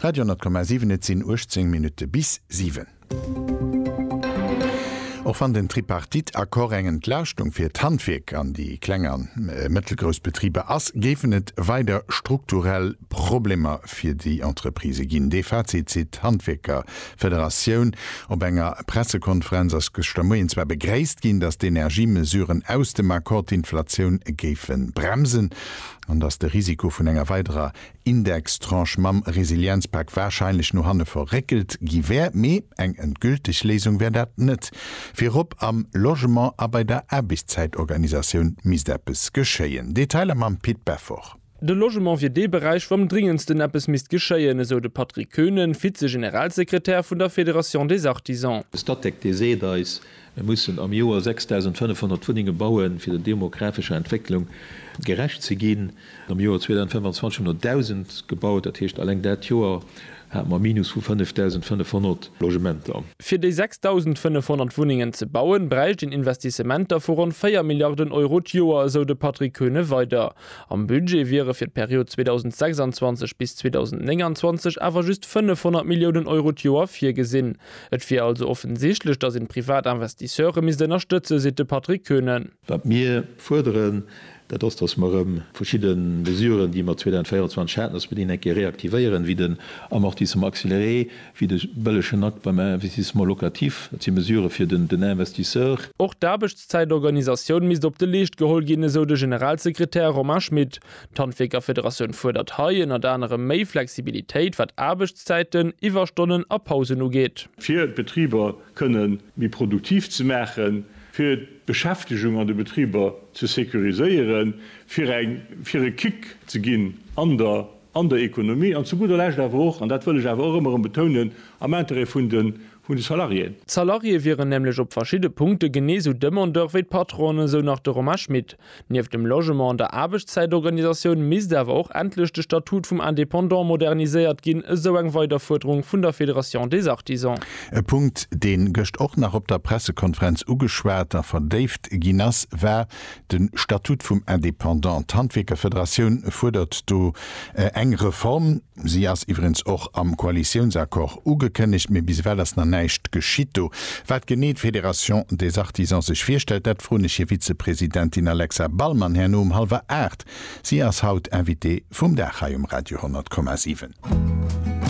Radio 10,7 Et sinn 18 Minutte bis siwen. Och wann den Tripartite-Accord eng Entlaaschtung fir d'Handwierk an déi kleng a mëttelgrouss Betriber ass, géifen et weider strukturell Problemer fir déi Entreprisë ginn. Dee Fazit zitt d'Handwierkerfederatioun op enger Pressekonferenz. Ass gëschter Moien zwar begréisst ginn, datt d'Energiemesuren aus dem Accord d'Inflatioun géife bremsen. an dass de Risiko vun enger weiderer Indextranche mam Resilienzpak warscheinlech no hanne verréckelt gi wär, mee eng endgülteg Léisung wär dat net. Virop am Logement a bei der Aarbechtszäitorganisatioun misst eppes geschéien. Detailer mam Pit Beffort. De Logement wier dee Beräich, wou am dringendsten eppes misst geschéien, esou de Patrick Koenen, Vize-Generalsekretär vun der Fédération des Artisans. De Statec, dee seet eis, Mir mussen am Joer 6500 Wunnenge bauen, fir der demographescher Entwécklung gerecht ze ginn. Am Joer 2025 hunn der 1.000 gebaut. Dat heescht, eleng dat Joer hate mer e Minus vu 5.500 Logementer. Fir déi 6.500 Wunnengen ze bauen, bräicht een Investissementer vu ronn 4 Milliarden Euro d'Joer, esou de Patrick Kuehne weider. Am Budget wiere fir d'Period 2026 bis 2029 awer just 500 Milliounen Euro d'Joer virgesinn. Et wier also offensichtlech, datt een privat Investisseure misst ënnerstëtzen, seet de Patrick Koenen. Wat mir fuerderen, dat ass, datt mer erëm verschidde Mesuren, déi mer 2024 haten, datt mer déi eng Kéier reaktivéieren, wéi den Amortissement accéléré, wéi de bëllegen Akt beim Investissement locatif. Dat si Mesurë fir den Investisseur. Och d'Aarbechtszäitorganisatioun misst op de Leescht geholl ginn, esou de Generalsekretär Romain Schmit. D'Handwierkerfederatioun fuerdert hei ënnert anerem méi Flexibilitéit, wat Aarbechtszäiten, Iwwerstonnen a Pausen ugeet. Fir d'Betriber kënne méi produktiv ze maachen, fir d'Beschäftegung an de Betriber ze securiséieren, fir eng fir e Kick ze ginn an der an der Ekonomie an zu gudder Lescht awer och, an dat wëll ech awer och ëmmer erëm betounen, am Intérêt vun de vun de Salariéen. D'Salarié wieren nämlech op verschidde Punkte genee sou Demandeur wéi d'Patronen, esou nach de Romain Schmit. Nieft dem Logement an der Aarbechtszäitorganisatioun misst awer och endlech de Statut vum Indépendant moderniséiert ginn, esou eng weider Fuerderung vun der Fédération des Artisans. E Punkt, deen gëscht och nach op der Pressekonferenz ugeschwat a verdéift ginn ass, war de Statut vum Indépendant. D'Handwierkerfederatioun fuerdert do eng Reform. Si ass iwwregens och am Koalitiounsaccord ugekënnegt, mee bis ewell ass nach näischt geschitt. Do, wat genee d'Fédération des Artisans sech virstellt, dat froen ech hir Vizepresidentin Alexa Ballmann herno um hallwer aacht. Si ass haut Invitée vum Dag hei um Radio 10,7.